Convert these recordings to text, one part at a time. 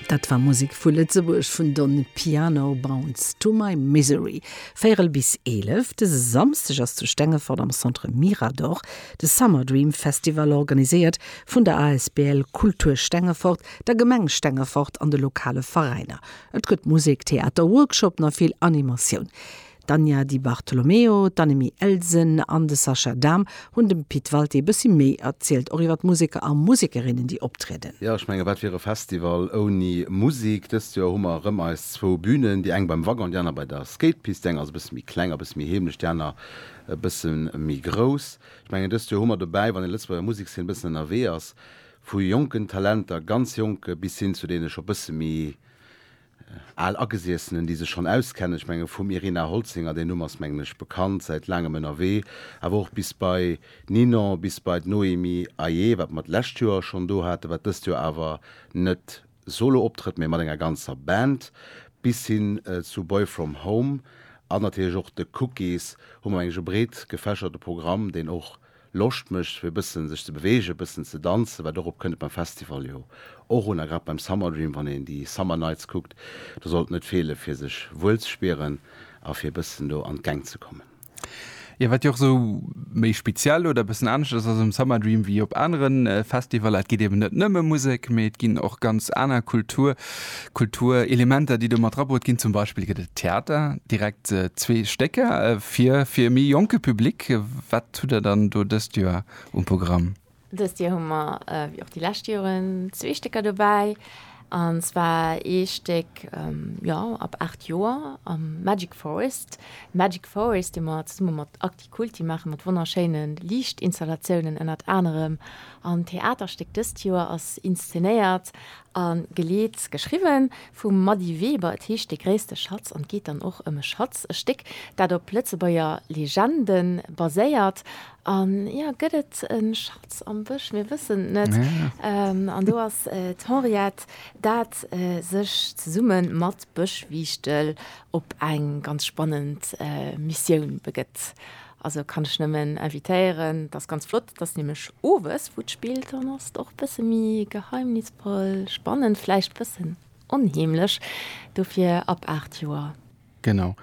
Dat war Musek vu Lëtzebuerg vun Don Piano Bounce to my Misery. Véierel bis eelef dëse Samsdeg ass zu Stengefort am Centre Mirador de Summer Dream Festival organiséiert vun der asbl Kultur Stengefort, der Gemeng Stengefort an de lokale Veräiner. Et gëtt Musek, Theater, Workshoppen a vill Animatioun. D'Anja Di Bartolomeo, d'Annemie Elsen an de Sascha Dahm hunn dem Pit Walté e bëssi méi erzielt, och iwwer d'Museker a Musekerinnen, déi optrieden. Jo, ech menge wat wier e Festival ouni Musek? Dëst Joer hu mer erëm eis zwou Bünen, déi eng beim Wagon, déi aner bei der Skatepist. Déi eng ass e bësse méi kleng a e bësse méi heemlech, déi aner e bësse méi grouss. Ech mengen dëst Joer hu mer dobäi, wann ee Lëtzebuerger Musekszeen e bëssen ënnerwee ass, vu jonken Talenter, ganz jonke bis hin zu deene scho bësse méi Al Agesiessenen, déi sech schonn auskennen, ech menge vum Irina Holzinger, deen Numm ass mengen ech bekannt, säit laangem ënnerwee, awer och bis bei Ninon, bis bei d'Noémie Aye, wat mer d'lescht Joer schonn do haten, wat dëst Joer awer net solo optrëtt, mee mat enger ganzer Band, bis hin zu Boy From Home an natierlech och de Cookies, hu mer mengen ech e breet gefächerte Programm, deen och Loscht mécht fir e bëssen sech ze beweegen, e bëssen ze danzen, wat och op kënnt beim Festival jo och un, a grad beim Summer Dream, wann een déi Summer Nights kuckt, do sollt net feelen, fir sech wuel ze spieren a fir e bëssen do an d'Gäng ze kommen. Jo, wat jo och esou méi speziell oder e bëssen anescht ass, ass um Summer Dream wéi op anere Festivaller, et geet eben net nëmme Musek, mee et ginn och ganz aner Kultur, Kultur, Elementer, déi do mat drabrut ginn. Zum Beispill gëtt et Theater, direkt zwee Stécker fir fir e méi jonke Public. Wat hutt Der dann do dëst Joer um Programm? Dëst Joer hu mer, wéi och déi lescht Joren, zwee Stécker dobäi. An zwar ee Stéck, jo, ab 8 Joer, Magic Forest. Magic Forest, dee mer zesumme mat. Déi Kulti maache mat wonnerschéine Liichtinstallatiounen ënnert anerem an Theaterstéck. Dëst Joer ass inszenéiert a geleet, geschriwwen vum Mady Weber. Et heescht De gréisste Schatz an geet dann och ëm e Schatz, e Stéck, dat op Lëtzebuerger Legende baséiert. An jo, gëtt et e Schatz am Bësch? Mir wëssen et net. An do ass d'Henriette, dat sech zesumme mat Bëschwiichtel op eng ganz spannend Missioun begëtt. Also kann ech nëmmen invitéieren, dat ass ganz flott, dat ass nämlech owes wou d'Spill dann ass, och e bësse méi geheimnisvoll, spannend, vläicht e bëssen onheemlech, dofir ab 8 Joer. Genau,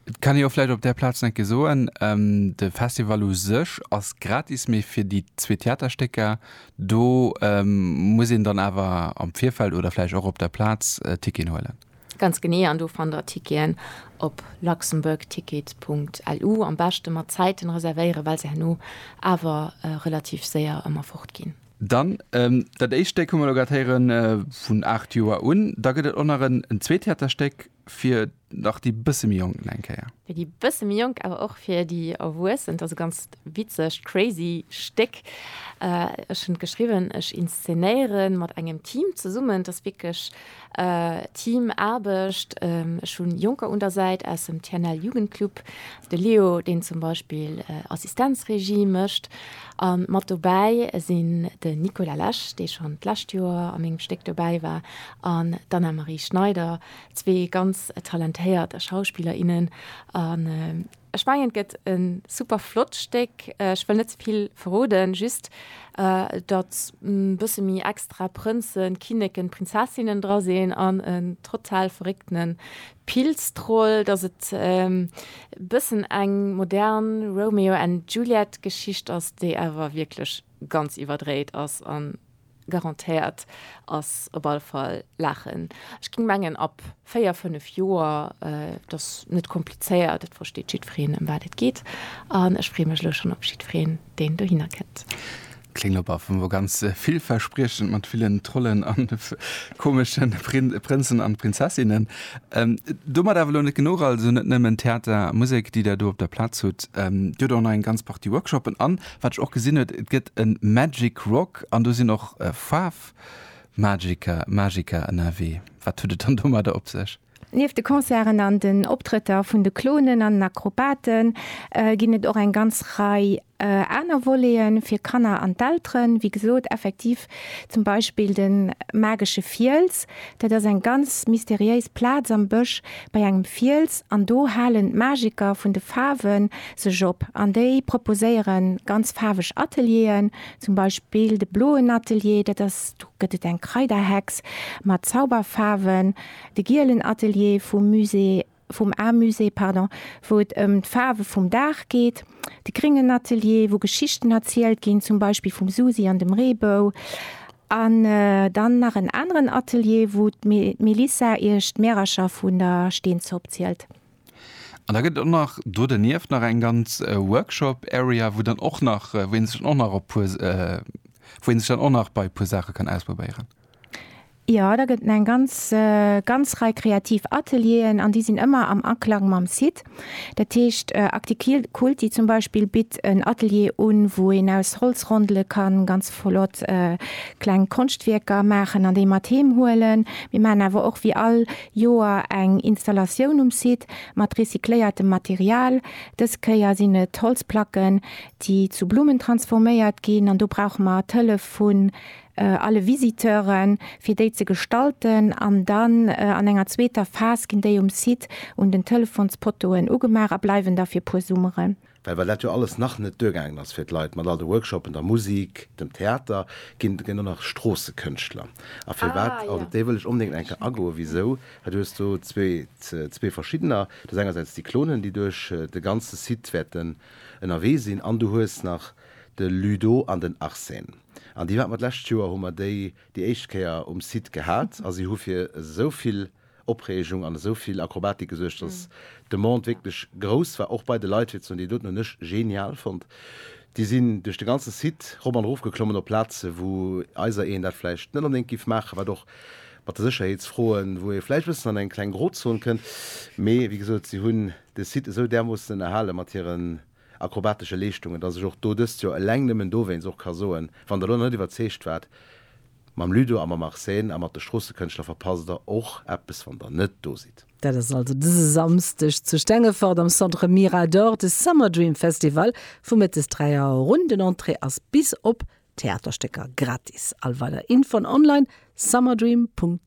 et kann ee jo vläicht op där Plaz nach eng Kéier soen, de Festival u sech ass gratis, mee fir déi zwee Theaterstécker, do muss een dann awer am Virfeld oder vläicht och op der Plaz Ticketen huelen. Ganz genee, an do fannt der Ticketen op luxembourgticket.lu. Am beschte mat Zäiten reservéieren, well se herno awer relativ séier ëmmer fort ginn. Dann dat éischt Stéck hu mer elo grad héieren, vun 8 Joer un. Da gëtt et och nach en zweet Theaterstéck fir nach déi bësse méi Jonk, nach eng Kéier. Fir déi bësse méi Jonk, awer och fir déi Erwuessen. Et ass e ganz witzegt, crazy Stéck. Ech hunn et geschriwwen, ech inszenéiere mat engem Team zesummen. Et ass wierklech Team Aarbecht, ech hunn Jonker un der Säit aus dem TNL Jugendclub, de Leo deen zum Beispill Assistenzregie mécht an mat dobäi sinn den Nicolas Lesch dee schonn d'lescht Joer a mengem Stéck dobäi war an d'Anna-Marie Schneider, zwee ganz talentéiert Schauspiller, innen. Ech mengen et gëtt e super flott Stéck. Ech wëll net ze vill verroden, just datt e bësse méi extra Prënzen, Kinneken, Prinzessinnen dra sinn an en total verréckte Pilztroll, datt et e bëssen eng modern Romeo and Juliet Geschicht ass, déi awer wierklech ganz iwwerdréit ass an Garantéiert ass op alle Fall Laachen. Ech ging mengen ab 4, 5 Joer. Et ass net komplizéiert, et versteet jiddwereen em wat et geet an ech freeë mech elo schonn op jiddwereen deen dohinner kënnt. Kléngt op alle Fall ganz villverspriechend mat villen Trollen an komesche Prënzen an Prinzessinnen. Domat awer elo net genuch, also net nëmmen Theater a Musek déi der do op der Plaz hutt, dir hutt och nach eng ganz Partie Workshoppen an Wat ech och gesinn huet, et gëtt e Magic Rock an do sinn och Faarfmagiker, Magiker ënnerwee. Wat huet et dann domadder op sech? Nieft de Concerten an den Optrëtter vun de Clonen an Akrobate ginn et och eng ganz Rei aner Voleten fir Kanner an d'Elteren. Wéi gesot, effektiv Zum Beispill de Magesche Fiels, dat ass eng ganz mysteriéis Plaz am Bësch bei engem Fiels an do halen d'Magiker vun de Faarwe sech op an déi proposéiere ganz faarweg Atelieren, zum Beispill de bloen Atelier, dat ass, do gëtt et eng Kraiderhex mat Zauberfaarwen, de gielen Atelier vum Musée. vum Art Musée, pardon, wou et ëm d'Faarwe vum Dag geet, de gréngen Atelier, wou Geschichten erzielt ginn, zum Beispill vum Susi an dem Reebou, an dann nach en aneren Atelier, wou d'Melissa iech d'Märercher vun der Steenzopp zielt. An da gëtt et och nach do dernieft nach eng ganz Workshop Area, wou dann och nach, wou ee sech dann och nach op puer, wou ee sech dann och nach bei e puer Saache kann ausprobéieren. Jo, da gëtt eng ganz ganz Rei kreativ Atelieren an déi sinn ëmmer am Aklang mam Site. Dat heescht Acticulti zum Beispill bitt en Atelier un, wou een aus Holzrondele ka ganz flott kleng Konschtwierker maachen an déi mat heem huelen. Mir maachen awer och wéi all Joer eng Installatioun um Site mat recycléiertem Material. Dës Kéier sinn et Holzplacken, déi zu Blummen transforméiert ginn an do brauche mer d'Hëllef vu alle Visiteuren, fir déi ze gestalten an dann an enger zweeter Phas ginn déi um Site un den Telefonspottoen ugemaach a bleiwen da fir puer Summeren. Well well dat jo alles nach net duergaangen ass fir d'Leit mat all de Workshopen, der Musik, dem Theater, ginn ginn elo nach Stroossekënschtler a firwat, an op déi wëll ech onbedéngt eng Kéier agoen, wisou, well du hues do zwee zwee verschiddener, du hues engersäits déi Clonen, déi duerch de ganze Site wäerten ënnerwee sinn an du hues nach de Ludo an den Arsène. An déi haten mer d'lescht Joer, hu mer déi déi éischt Kéier um Site gehat a si hu fir esou vill Opreegung an esou vill Akrobatik gesuergt, dass d'Demande wierklech grouss war, och bei de Leit, fir ze soen, déi doten hunn ech genial fonnt. Déi sinn duerch de ganze Site rop an erof geklommen op Plaze wou eisereen dat vläicht net onbedéngt géif maachen, wat och mat de Sécherheetsfroen, wou ee vläicht e bëssen an eng kleng Grozon kënnt, mee wéi gesot, si hunn de Site esou därmoossen ënnerhale mat hiren akrobatesche Leeschtungen, dass ech och do dëst Joer eleng nëmmen dowéinst och ka soen, wann Der elo nach net iwwerzeegt waart, Mam Ludo a mam Arsène a mat de Stroossëkënschtler verpasst Der och eppes, wann Der net do sidd. Dat ass also dëse Samsdeg zu Stengefort am Centre Mirador, de Summer Dream Festival vu mëttes 3 Auer erun. Den Entrée ass bis op Theaterstécker gratis. All weider Infoen online, summerdream.ch.